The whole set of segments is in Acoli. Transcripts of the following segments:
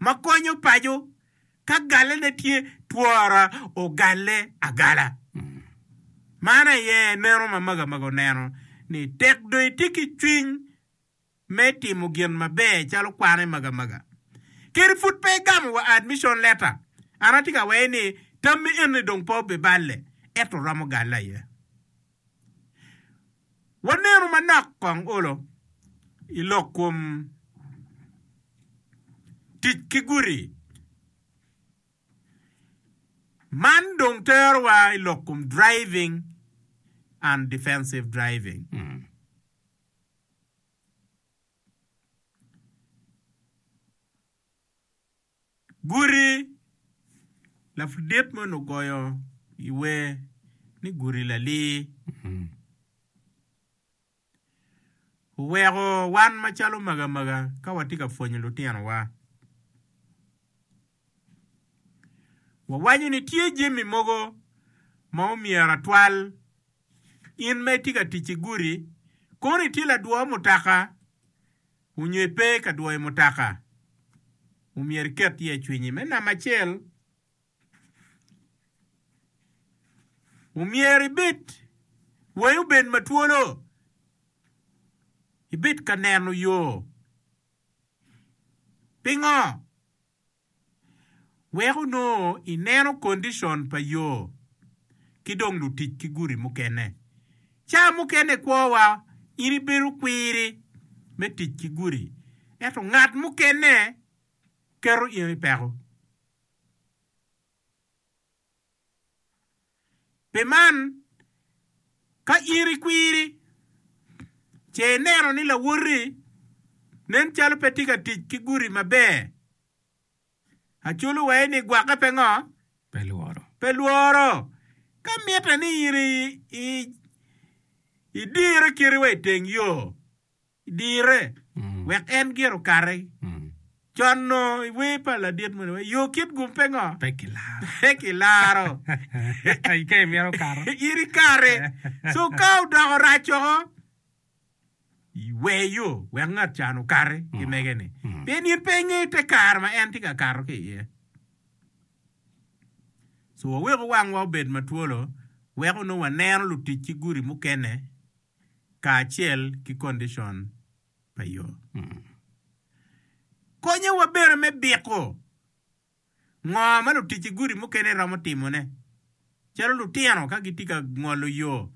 ma konyo paco ka galene tye twora ogalle agala. Man aye neno ma Magamaga oneno ni tek dong itye ki cwiny me timo gin maber calo kwan i Magamaga. Kadi pud pe egamo wa admission letter, an atye ka wei ni tammi enni dong pe obiballe, ento romo galle aye. Wanenu manok kong olo i lok kom tic ki guti. Man dong terowa i lok kom driving and defensive driving. Guti, Lapudit moni ogoyo i wer ni guti lalir. Oweko wan macalo magamaga ka watye ka pwonyo lutinowa. Wawaco ni tye jami mogo ma omyero atwal. In ma itye ka tic i guti, kono itye ladwo mutoka? Onyo ipe ka dwoyo mutaka, omyero iket ye cwinyi. Me namba acel, omyero ibed wangi obed matwolo, ibed ka neno yo. Pingo? Wek onongo ineno kondicon pa yo ki dong lutic ki gudi mukene. Ca mukene i kwowa in ibedo kwiri me tic ki gudi, ento ngat mukene keto in i peko. Pi man, ka in ikwiri, ce ineno ni lawoti nen calo pe tye ka tic ki gudi maber. Aculo wa ni gwokke pe ngo? Pe lworo. Ka mitte ni in idire kite wa i teng yo, Dire, wek en gire okati. Conno i wer pa ladit moni waco, Yo kit gum pe ngo? Pe kilaro. Ka imito kato. In ikati. So ka odoko rac woko, wer yo wek ngat can okati ki mege-ni. Pien in pe ingeyo te kare ma en tye ka kato ki iye. So waweku wangwa obed matwolo wek onongo waneno lutic ki gudi mukene. kacel ki kondicon pa yo. Konyowa bene me biko ngo ma lutic gudi mukene romo timone, calo lutino ka gitye ka ngolo yo.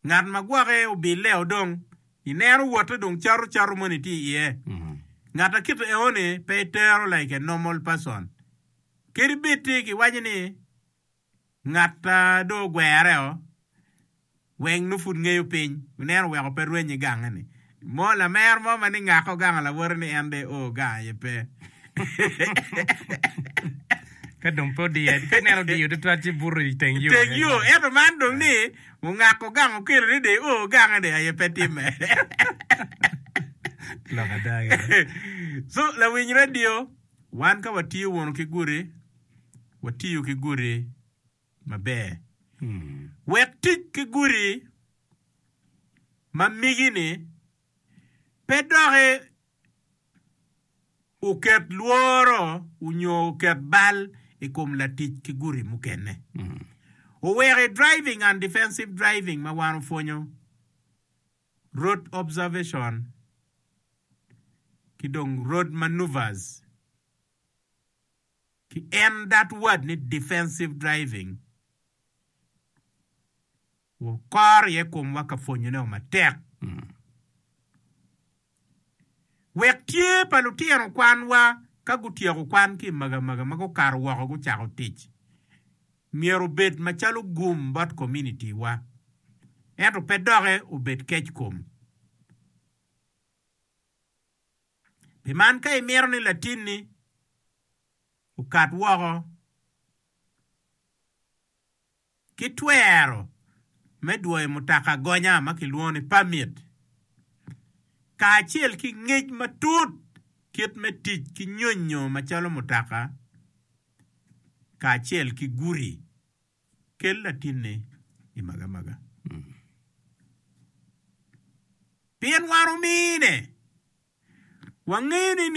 Ngat ma gwoke obilleo dong ineno wote dong cato cato moni tye iye. Ngat ma kit eoni pe itero like a normal person. Kadi bed tye kiwaco ni Ngat a dong ogwere-o, weng nongo pud ngeyo piny, ineno weko pe rwenye gange-ni. Mo lamer mo ma ni ngako gango lawote ni en dong eo gango aye pe. Ka dong pe odiye, ka ineno odiyo twatwat ci buto i teng yo. Teng yo, ento man dong ni ongako gango okelo ni dong eo gange dong aye pe timme. Lok ada gire. Co lawiny radio. Wan ka watiyo wunu ki gudi, watiyo ki gudi maber. Wek tic ki gudi ma migi-ni pe doki oket lworo nyo oket bal i kom latic ki gudi mukene, oweko i Driving Undefensive Driving ma wan opwonyo, Road observation ki dong road manoeuvres ki en that word ni defensive driving wukoro iye komwa ka pwonyonego matek wek tye pa lutino kwanwa ka gutyeko kwan ki i magamaga ma gukato woko gucako tic. Myero obed macalo gum bot kominiti wa, ento pe doke obed kec kom. Pi man ka imito ni latinni okat woko ki twero me dwoyo mutoka gonya ma kilwongo ni pamit, kacel ki ngec matut kit me tic ki nyonyo macalo mutoka, kacel ki guti, kel latinni i magamaga. Pien wan omine, wangeni ni.